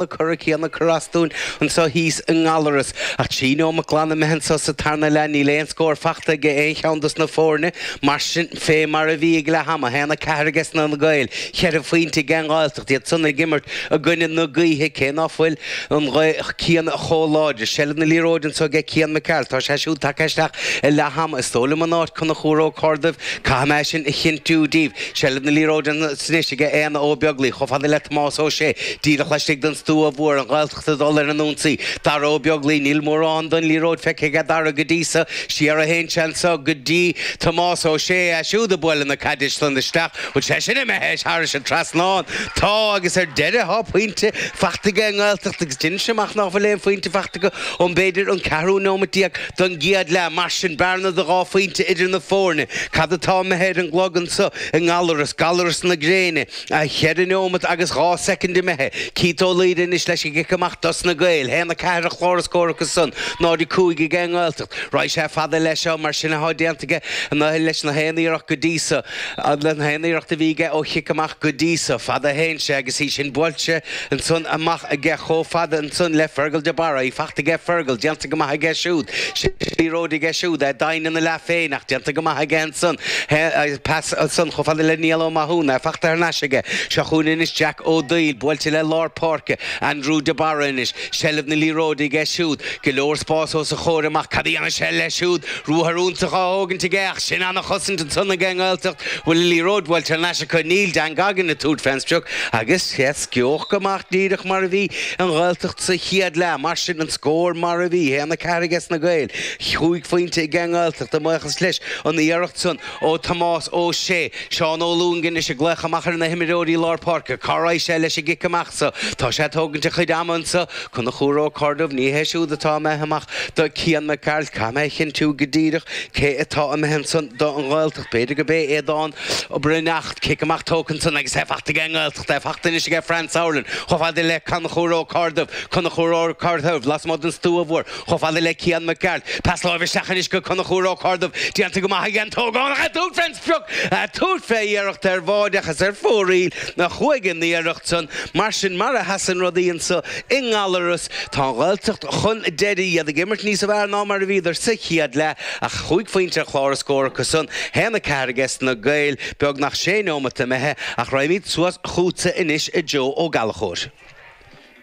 na cora céanna cur as dúinn annso thíos i nGallarus. Ach trí neomat glan imithe annso sa tarna leath níl aon scór fachta aige aon cheann dos na fóirne mar sin fé mar a bhí ag leath ama, 1, 4 aige sna na Gaeil, cheithre phoinnte aige an Ghaeltacht, iad san ag imirt i gcoinne na gaoithe cé ná fuil an ghaoth céanna chomh láidir. Seilbh na liathróide annso aige Cian Mac Gearailt. Tá sé siúd tagtha isteach i leath ama. Is dó' liom in áit Conchúr Ó Corrduibh. Caithfidh mé sin a chinntiú díbh. Seilbh na liathróide ansan anois aige Aodhna Ó Beaglaoich chomh fada le Tomás Ó Sé, díreach laistigh den stua mhór, an Ghaeltacht ag dul ar an ionsaí. Dara Ó Beaglaoich, níl mórán den liathróid feicthe aige Dara go dtí so, siar a théann sé anso go dtí Tomás Ó Sé, é siúd ag bualadh na caide san isteach, an bhfuil sé sin imithe thairis an trasnán. Tá agus ar deireadh thá pointe fachta aige an nGaeltacht agus deinimse amach ná fuil aon phointe fachta acu ó b'fhéidir an ceathrú neomat déag. Don gcéad leath, mar sin, bearna de dhá phointe idir na foirne. Cad atá imithe ar an gclog annso i nGallarus, Gallaras na Gréine? Cheithre neomat agus dhá soicind imithe. Keith Ó Laoire anois leis an gcic amach dos na Gaeil. Haon a ceathair ar chlár na scór acu san. 0 a cúig aige an nGaeltacht. Raghaidh sé fada leis seo mar sin athá déanta aige leis na haon iarracht go dtí so. Na haon iarracht a bhí aige ó chic amach go dtí so, fada a théann sé agus í sin buailte. Ansan amach aige chomh fada ansan le Fergal De Barra. Í fachta aige Fergal, déanta go maith aige siúd. Liathróid aige siúd, é doimhin ina leath féin ach déanta go maith aige ansan. Pas ansan chomh fada le Niall Ó Mathúna, é fachta thar n-ais aige. Seo chúinn anois Jack Ó Doighil, buailte le lár páirce. Andrew De Barra anois. Seilbh na liathróide aige siúd. Go leor spás os a chomhair amach. Cad a dhéanfaidh sé leis siúd? Ruathar iontach á thógaint aige ach sin an-chosaint ansan ag an nGaeltacht. An bhfuil an liathróid buaite thar n-ais acu? Níl. Dan Goggin ag tabhairt fén sprioc agus sheas Geoghegan amach díreach mar a bhí an Ghaeltacht sa chéad leath. Mar sin an scór mar a bhí, haon a ceathair ages na Gaeil, chúig phoinnte ag an nGaeltacht a bhuíochas leis an iarracht san ó Tomás Ó Sé. Seán Ó Lúing anois ag glaoch amach ar na himreoirí lár páirce. Cá raghaidh sé leis an gcic amach so? Tá sé ag tógaint a chuid ama anso. Conchúr Ó Corrduibh, Ní hé siúd atá imithe amach do Cian Mac Gearailt caithfidh mé a chinntiú go díreach cé atá imithe ansan don Ghaeltacht. B'fhéidir gob é Aodán Ó Broin ach cic amach tógtha ansan agus é fachta aige an nGaeltacht, é fachta anois aige Franz Sauerland chomh fada le Conchúr Ó Corrduibh. Conchúr Ó Corrduibh, Lasmuigh den stua mhór. Chomh fada le Cian Mac Gearailt, pas láimhe isteach anois go Conchúr Ó Corrduibh, déanta go maith aige an t-ógánach ag tabhairt fén sprioc, ag tabhairt fé iarracht ar bháide ach is ar fóraoil a chuaigh an iarracht san. Mar sin, mar a sheasann rudaí anso i nGallarus, tá an Ghaeltacht chun deiridh, iad ag imirt níos fearr ná mar a bhíodar sa chéad leath ach chúig phointe ar chlár na scór acu san, haon a ceathair aige sna Gaeil, beagnach sé neomat imithe, ach raghaimíd suas chútsa anois a Joe Ó Gallchóir.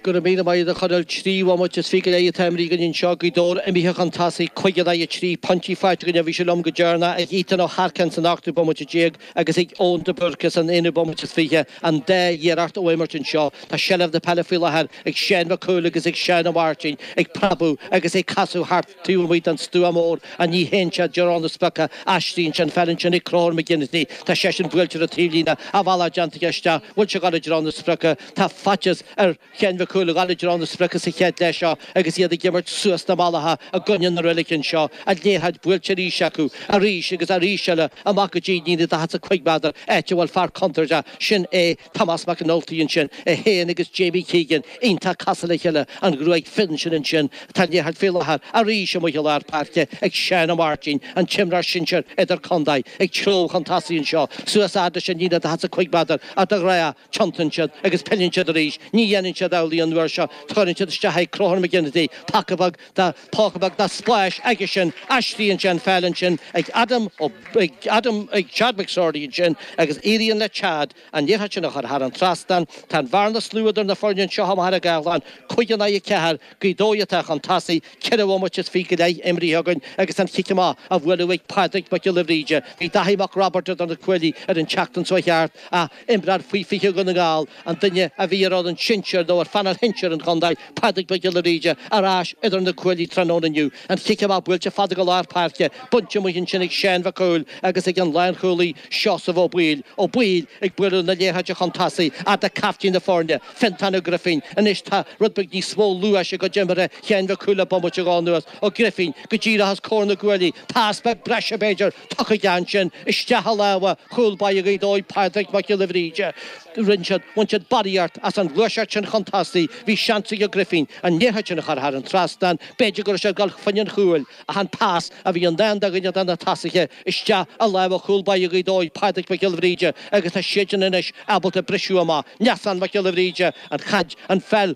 Go raibh míle maith a'd a Chonaill, trí bhomaite is fiche go leith atá imrithe againn anseo, Gaoth Dobhair imithe chun tosaigh, cuig in aghaidh a trí, pointí faighte againn ó bhí sé liom go deireanach ag Ethan Ó hEarcáin san ochtú bomaite déag agus ag Eoin de Búrca san aonú bomaite is fiche, an dá iarracht ó imirt anseo. Tá seilbh na peile faoi láthair ag Seáin Mhic Cumhaill agus ag Seán Ó Máirtín ag preabadh agus ag casadh thart taobh amuigh den stua mór ach ní théann sé i dtreo na sprioca, aistríonn sé an pheil ansin ag Conchúr McGinty, tá seisean buailte ar an taobhlíne, a bhealach déanta aige isteach, an bhfuil sé ag gabháil i dtreo na sprioca, Tá faitíos ar Sheáin Mhic Cumhaill a ghabháil i dtreo na sprioca sa chéad leath seo agus iad ag imirt suas na malaí i gcoinne na reilige anseo, an liathróid buailte arís acu, arís agus arís eile, amach go dtí líne daichead 's a cúig méadar, áit a bhfuil fear contúirteach, sin é Tomás Mac an Ultaigh ansin, é féin agus Jamie Keegan iontach cosúil le chéile, an ghruaig fhionn sin ansin tá an liathróid faoi láthair, arís amuigh i lár páirce ag Seán Ó Máirtín, an t-imreoir sinsir idir-contae, ag treabhadh chun tosaigh anseo, suas fhad leis an líne daichead 's a cúig méadar, ach de ghnáth Tiontaíonn siad agus pilleann siad arís. Ní dhéanann siad amhlaidh an uair seo. Tugann siad isteach ag Conchúr McGinty, póca beag de, póca beag de spás aigesean. Aistríonn sé an pheil ansin ag Adam O, ag Adam, ag Chad McSorley ansin agus éiríonn le Chad an liathróid sin a chur thar an trasnán. Tá an bhearna is lú idir na foirne anseo i Machaire Gathlán, cúig in aghaidh a ceathair. Gaoth Dobhair atá chun tosaigh. Ceithre bhomaite is fiche go leith imrithe againn agus an chic amach á bhualadh ag Pádraig Mac Giolla Bhríde. Bhí Daithí Mac Roibeaird idir na cuaillí ar an tseachtain seo a chuaigh thart ach. imreoir faoi 20 Dhún na nGall, an duine a bhí ar fhoireann sinsir nó ar phainéal shinsir an chontae, Pádraig Mac Giolla Bhríde, ar ais idir na cuaillí tráthnóna inniu, an chic amach buailte fada go lár páirce, bainte amuigh ansin ag Seáin Mhic Cumhaill agus ag an lánchúlaí Seosamh Ó Baoill. Ó Baoill ag bualadh na liathróide chun tosaigh fhad le caiftín na foirne, Fiontán Ó Grifín. Anois tá rud beag níos mó luais i gcuid imeartha Sheáin Mhic Cumhaill le bomaite nó dhó anuas. Ó Grifín go díreach os comhair na gcuaillí, pas beag breise b'fhéidir, tugtha aige ansin isteach i lámha chúl báire Ghaoth Dobhair Pádraig Mac Giolla Bhríde. Rinn siad, bhain siad barraíocht as an ghluaiseacht sin chun tosaigh. Bhí seans ag Ó Grifín an liathróid sin a chur thar an trasnán. B'fhéidir go raibh sé ag dul fá choinne an chúil ach an pas a bhí i ndán do dhuine de na tosaithe isteach i lámha chúl báire Ghaoth Dobhair Pádraig Mac Giolla Bhríde agus tá siadsan anois ábalta briseadh amach. Neasán Mac Giolla Bhríde, an chaid, an pheil,